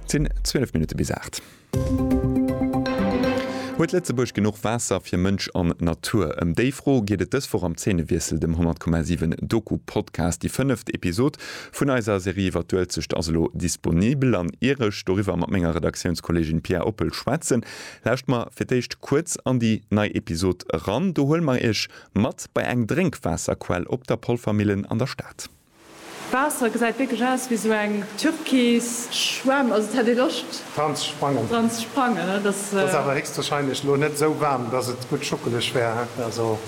Et sinn 12 Minutte bis 8. Huet Lëtzebuerg genuch Waasser fir Mënsch an Natur? Ëm déi Fro geet et dës Woch am Zeenewiessel, dem 100,7 Doku-Podcast. Déi fënneft Episod vun eiser Serie iwwer d'Uelzecht ass elo disponibel an ier ech doriwwer mat menger Redaktiounskolleegin Pia Oppel schwätzen, lauscht mer fir d'éischt kuerz an déi nei Episod eran. Do huele mer iech mat bei eng Drénkwaasserquell op der Polvermillen an der Stad. D'Waasser gesäit wierklech aus ewéi sou eng türkis Schwämm, also et hätt ee Loscht dran ze sprangen, dran ze sprangen, et ass. Ass awer héchstwahrscheinlech lo net esou waarm, dass et gutt schuckeleg wär, also.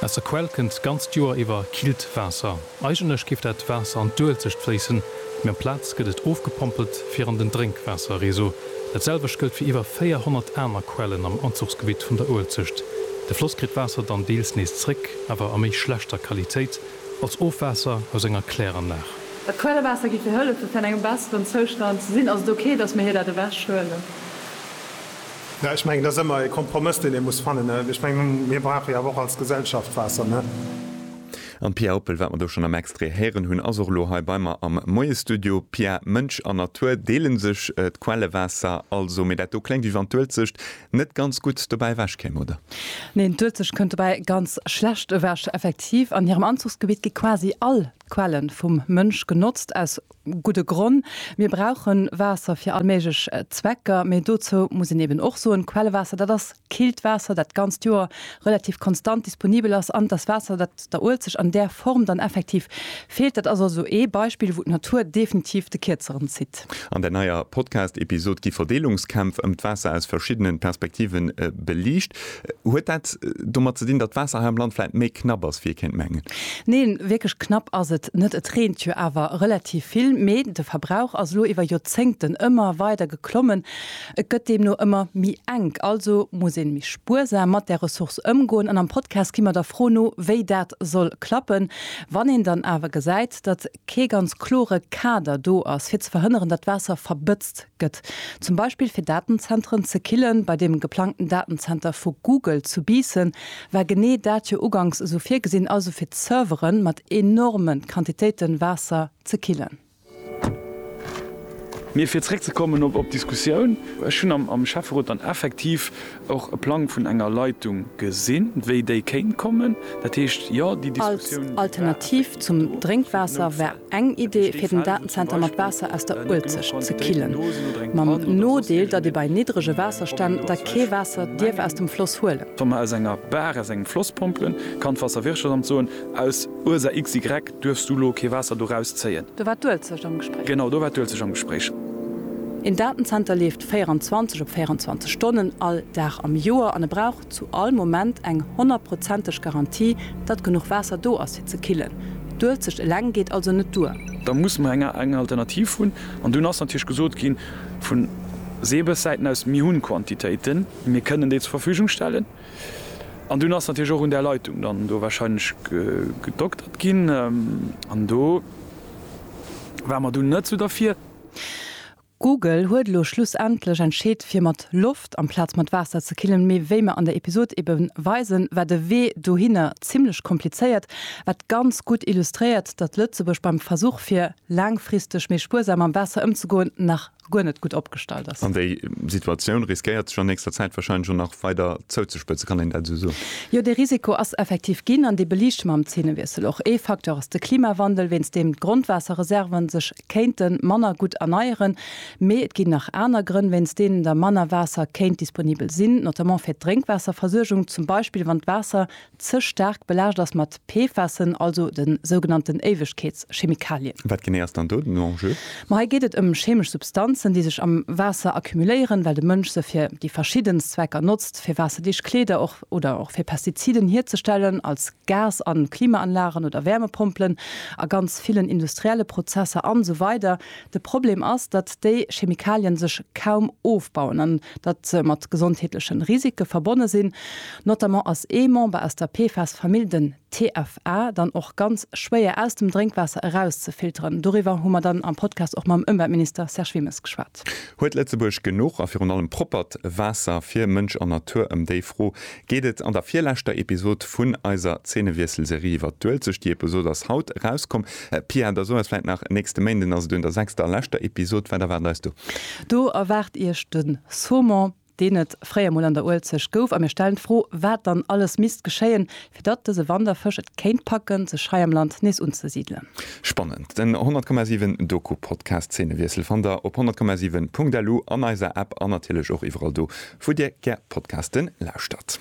Aus der Quell kënnt d'ganzt Joer iwwer killt Waasser. Eigentlech géif dat Waasser an d'Uelzecht fléissen, mee amplaz gëtt et ofgepompelt fir an den Drénkwaasserreseau. Dat selwecht gëllt fir iwwer 400 aner Quellen am Anzuchsgebitt vun der Uelzecht. De Floss kritt d'Waasser dann deels nees zréck, awer a méi schlechter Qualitéit. als Ofwaasser aus enger Kläranlag. Dat Quellewaasser giff fir hëllefen fir an engem besseren Zoustand ze sinn. Ass et ok dass mir hir dat ewech huelen? Jo, ech mengen et ass ëmmer e Kompromëss deen ee muss fannen. Ech mengen mir brauche jo awer och als Gesellschaft Waasser, ne? An d'Pia Oppel, wat mer do schonn am Extrait héieren hunn, ass och elo hei bei mer am Moiesstudio. Pia, Mënsch an Natur deele sech d'Quellewaasser also, mee dat do klengt wéi wann d'Uelzecht Net ganz gutt dobäi ewech kéim, oder? Neen, d'Uelzecht kënnt dobäi ganz schlecht ewech. Effektiv, an hirem Anzuchsgebitt gi quasi all d'Quelle vum Mënsch genotzt. Aus gudde Gronn, mir brauche Waasser fir all méiglech Zwecker. Mee dozou muss een eben och soen, Quellewaasser, dat ass killt Waasser, dat d'ganzt Joer relativ konstant disponibel ass. An et ass Waasser, dat der Uelzecht an där Form dann effektiv feelt. Dat ass also ee Beispill, wou d'Natur definitiv de Kierzeren zitt. Podcast. An der neier Podcast-Episod gi Verdeelungskämpf ëm d'Waasser aus verschiddenen Perspektive beliicht. Huet dat domat ze dinn, datt d'Waasser hei am Land vläit méi knapp ass, wéi ee kéint mengen? Neen, wierklech knapp ass et net. Et reent jo awer relativ vill, mee de Verbrauch ass elo iwwer Joerzéngten ëmmer weider geklommen. Et gëtt deemno ëmmer méi enk. Also muss een méi spuersam mat där Ressource ëmgoen. An am Podcast gi mer der Fro no, wéi dat soll klappen, wann een dann awer gesäit, datt kee ganz klore Kader do ass, fir ze verhënneren, datt d'Waasser verbëtzt gëtt, zum Beispill fir Datenzentren ze killen. Bei deem geplangten Datenzenter vu Google zu Biissen war genee dat jo uganks esou virgesinn, also fir d'Servere mat enorme Quantitéite Waasser ze killen. Mee fir zeréckzekommen op d'Diskussioun, Ech hunn am Schäfferot dann effektiv Och e Plang vun enger Leitung gesinn, wéi déi kéint kommen. Dat heescht, jo, déi Diskussioun, déi war. Als Alternativ zum Drénkwaasser war eng Idee, fir den Datenzenter mat Waasser aus der Uelzecht ze killen. Mam Nodeel, datt ee bei niddrege Waasserstänn da kee Waasser dierf aus dem Floss huelen. Wa mer aus enger Bar, aus engem Floss pompelen, kann d'Waasserwirtschaftsamt soen, aus Ursa XY duerfs du elo kee Waasser do rauszéien. Do war d'Uelzecht am Gespréich. Genau, do war d'Uelzecht am Gespréich. Een Datenzenter leeft 24 op 24 Stonnen all Dag am Joer an e brauch zu all Moment eng honnertprozenteg Garantie, datt genuch Waasser do ass fir ze killen. D'Uelzecht eleng geet also net duer. Da muss mer eng Alternativ hunn. An dunn ass natierlech gesot gi vu Seebessäiten aus, mir hunn Quantitéiten, mir kënnen déi zur Verfügung stellen. An dunn ass natierlech och un där Leitung dann do warscheinlech gedoktert ginn. An do ware mer dunn net esou derfir. Google huet elo schlussendlech entscheet fir mat Loft amplaz mat Waasser ze killen, mee wéi mer an der Episod ebe weisen, war de Wee dohinner zimmlech komplizéiert, wat ganz gutt illustréiert, datt Lëtzebuerg beim Versuch fir laangfristeg méi spuersam mam Waasser ëmzegoen nach guer net gutt opgestallt ass. An déi Situatioun riskéiert sech an nächster Zäit wahrscheinlech och nach weider zouzespëtzen, kann een dat esou soen? Jo, dee Risiko ass effektiv ginn an dee beliichte mer am Zeenewiessel och. Ee Facteur ass de Klimawandel, wéinst deem d'Grondwaasserreserven sech kéinte manner gutt erneieren, mee et ginn nach aner Grënn, wéinst deenen da manner Waasser kéint disponibel sinn, notamment fir d'Drénkwaasserversuergung, zum Beispill wann d'Waasser ze staark belaascht ass mat PFASen, also de sougenannten Éiwegkeetschemikalien. Wat genee ass dann do den Enjeu? Ma hei geet et ëm chemesch Substanzen, déi sech am Waasser accumuléieren, well de Mënsch se fir déi verschiddenst Zwecker notzt, fir waasserdicht Kleeder, och oder och fir Pestiziden hierzestellen, als. Gas a Klimaanlagen oder Wärmepompelen, a ganz villen industrielle Prozesser an esou weider De Problem ass, datt déi Chemikalien sech kaum ofbauen an datt se mat gesondheetlechen Risike verbonne sinn. Notamment ass ee Member aus der PFAS-Famill, den TFA, dann och ganz schwéier aus dem Drénkwaasser eraus ze filteren. Doriwwer hu mer dann am Podcast och mam Ëmweltminister Serge Wilmes geschwat. Welt. Huet Lëtzebuerg genuch a virun allem proppert Waasser fir Mënsch an Natur? Ëm déi Fro geet et an der virleschter Episod vun eiser Zeenewiesselserie iwwert d'Uelzecht. Déi Episod ass haut erauskomm. Pia, der soe eis vläit nach, nächste Méinden ass et un der sechster a leschter Episod. Wat erwaart eis do? Do erwaart iech de Saumon deen et fréier mol an der Uelzecht gouf, a mir stellen d'Fro, wat dann alles misst geschéien, fir datt dëse Wanderfësch et kéint packen, sech hei am Land nees unzesidelen. Spannend, den 100,7 Doku-Podcast Zeenewiessel fannt der op 100,7 Punkt lu, an eiser App an natierlech och iwwerall do, wou Dir gär Podcasten lauschtert.